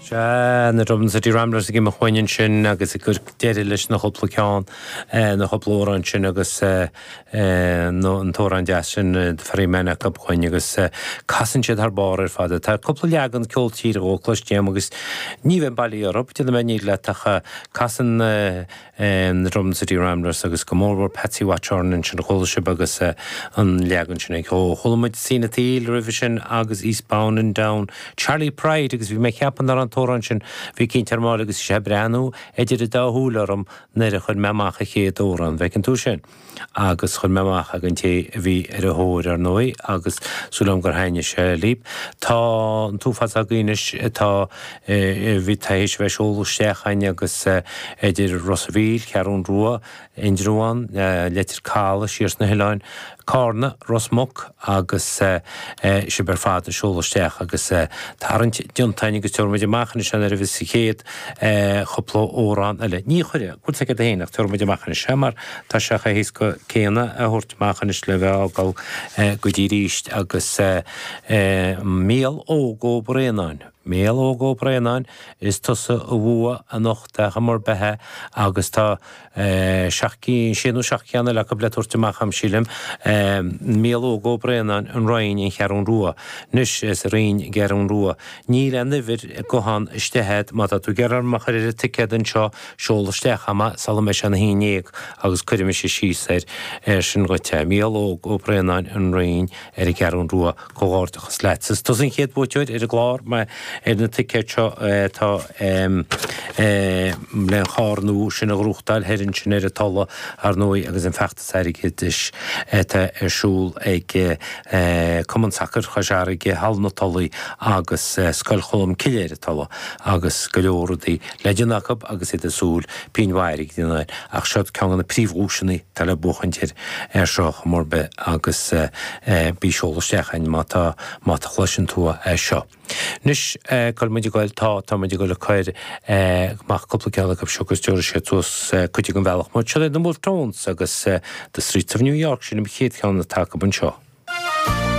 Sea, na Dublin City Ramblers ag imeacht chugainn ansin agus ag cur deireadh leis na chúpla ceann, na chúpla amhrán sin agus an t-amhrán deas sin Ferryman acu chugainn agus casann siad thar barr ar fad. Tá cúpla leagan ceol tíre dhó cloiste agam agus ní bheinn bailí orthu, ní dhéanfaidh mé aon bhréag leat ach casann em, The Dublin City Ramblers agus go mórmhór Patsy Watchorn ansin a chuala sibh agus eh, an leagan sin ag, ó, chuala muid Seen at the Eel roimhe sin agus Eastbound and Down Charley Pride agus bhí mé ag ceapadh nár an t-amhrán sin a bhí ag cinnt ar Mháille agus bhí sé ag breathnú idir a dá shúil orm nuair a chuir mé amach an chéad amhrán, an bhfeiceann tú sin? agus chuir mé amach ag an té a bhí ar a thóir, ar ndóigh, agus súil agam gur thaitnigh sé libh. Tá an t-uafás agaibh anois atá, bhí, tar éis a bheith ag seoladh isteach againn agus idir Ros a' Mhíl, Ceathrún Rua, Indreabhán, Leitir Calaidh, siar sna hoileáin, Cárna, Ros Muc agus sibh ar fad ag seoladh isteach agus tarraingt déanta againn agus tabharfaidh muid amach anois an oiread is an chéad chúpla amhrán eile. Ní chuirfidh, cúl soicind a haon, ach tabharfaidh muid amach anois, mar. Tá sé chomh héasca céanna a thabhairt amach anois le bheith á fhágáil go dtí arís agus Mícheál Óg Ó Braonáin, Mícheál Óg Ó Braonáin, is tusa a bhua anocht ar chuma ar bith agus tá seacht gcinn, sé nó seacht gceann eile acu le tabhairt amach a'm sílim, Mícheál Óg Ó Braonáin, an Rinn, an Cheathrún Rua. Anois, sa Rinn, Ceathrún Rua, níl aon uimhir gutháin, istigh a'd, má tá tú ag iarraidh orm a chur ar an ticéad anseo, Seol isteach a'm é sula mbeidh sé a haon dhéag agus cuirfidh mise síos air sin dhuit. Mícheál Óg Ó Braonáin, An Rinn, ar an gCeathrú Rua, comhghairdeachas leat. Is tusa an chéad bhuaiteoir ar an gclár mar ar na ticéid seo atá le an charr nua sin a ghnóthachtáil thoir ansin ar an Tulaigh, ar ndóigh, agus an feachtas. airgeadais atá ar siúl ag Cumann Sacair Chois Fharraige, Halla na Tulaí agus Scoil Cholm Cille ar an Tulaigh, agus go leor rudaí le déanamh acu agus iad ag súil pingin mhaith airgid a dhéanamh ach siod ceann de na príomhdhuaiseanna atá le buachaint ar seo ar chuma ar bith agus bí ag seoladh isteach chugainn má tá má cloiseann tú é seo. Anois, cuir muid ag goil, tá, tá muid ag goil ag cur amach cúpla ceann acu seo agus tabharfaidh siad suas cuid den bhealach muid. Siod é The Wolfe Tones agus The Streets of New York, sin an chéad cheann atá agam anseo.